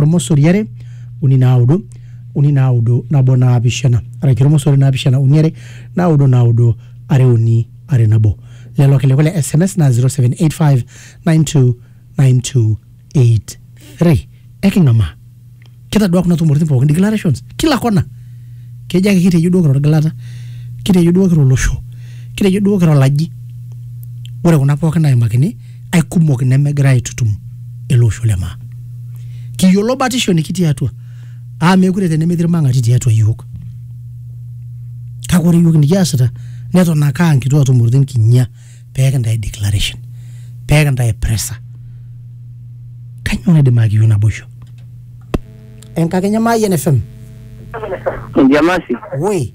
ormosori are uni naudo uni naudo nabo naapishana araki ormosori naapishana uni are naudo naudo are uni are nabo lelo kilikuwa le sms na 0785929283 eking'amaa kitadua kuna tumoritin pookin declarations kila kona kejo ake kitejo duo kira orgilata kitejo duo kira olosho kitejo duo kira olaji ore kuna pookin naimakini aikumok nemegira aitutum ele osho le maa kiyiolo batisho nikitii atua aa meekure tenemetii irmang'ati tiatua iyiook kake ore iyiook nikiasita neton ake aa nkituaa tumoritin kinyia pee kintae declaration pee kintae pressure kanyoo naidim ayaki iyiook naboisho enkakenya Mayian FM Jamasi, woi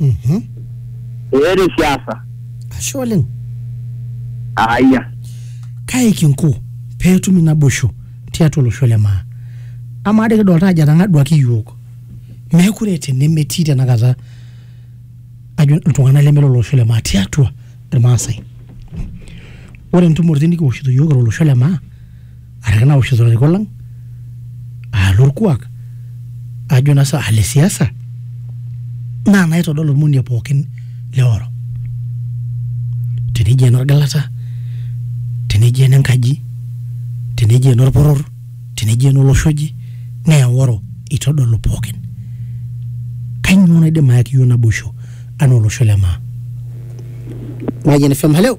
Mhm. eeta esiasa ashe oleng aayia kae kinko peetumi naboisho tiatua olosho le maa amaa doi kidolta ajo etang'aduaki iyiook meekure eeta enemetii tenakata ajo iltung'anak leme lolosho le maa tiatua irmaasai ore intumoritin nikiwoshito iyiook kira olosho le maa araki naoshito ilarikok lang aa lorkuak ajo naa sa le siasa naa naitodol ormonie pookin le oro teneji enorgilata teneji enenkaji teneji enorporor teneji enolosho oje naa eworo itodolu pookin kainyoo naidim ayaki iyiok naboisho anaa olosho le maa Mayian FM, hello.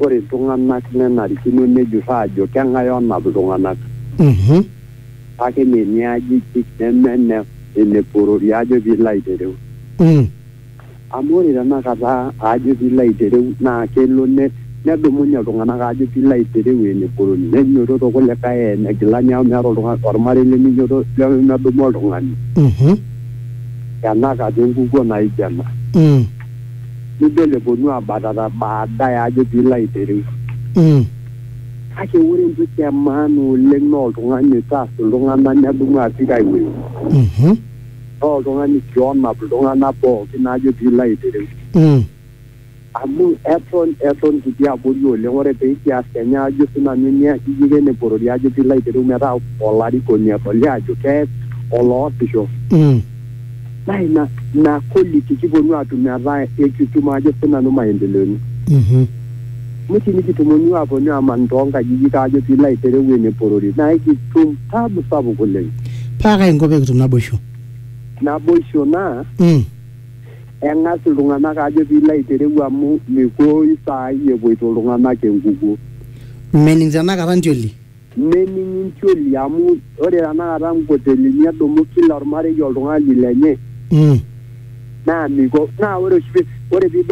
Ore iltung'ana nenarikino nejur aajo keng'ae onap iltung'ana. Kake mme ene ajijik neme ene ene porori ajo pee ilo aitereu. Amu ore tenakata ajo pee ilo aitereu naa kelo nedumunye iltung'ana ajo pee ilo aitereu ene porori nenyototo kulikae eeta ene gila neeku meeta oltung'ani olmarei leminyototo lemedumu oltung'ani tenakata enkukuo naijo ena. nidol eponu abatata baadaye ajo piilo aitereu. Mm. Kake ore entoki e maana oleng naa oltung'ani oitaas iltung'anak nedumu apik ai wueji. Mhm. Naa oltung'ani sii onap iltung'anak pookin ajo piilo aitereu. Mm. Amu eton eton kitii abori oleng ore pikias kenya ajo sii nanu nia kiyiken eporori ajo piilo aitereu metaa olarikoni edoli ajo kees oloosisho. Mm. naa ina ina quality kiponu aatum metaa ekitum ajo sinanu maendeleoni Mhm. amu tinikitumonu aaponu aman toonkajijik ajo piilo aitereu ene porori naa ekitum tabu sapuk oleng paa kai inko pekitum naboisho naboisho naa Mm. eng'as iltung'anak ajo piilo aitereu amu mikuoyu saai epuoito iltung'anak enkukuo mening tenakata ntioli Nening intioli amu ore tenakata nkotelini edumu kila olmarei oltung'ani lenye naa miko naa ore oshi ore piidol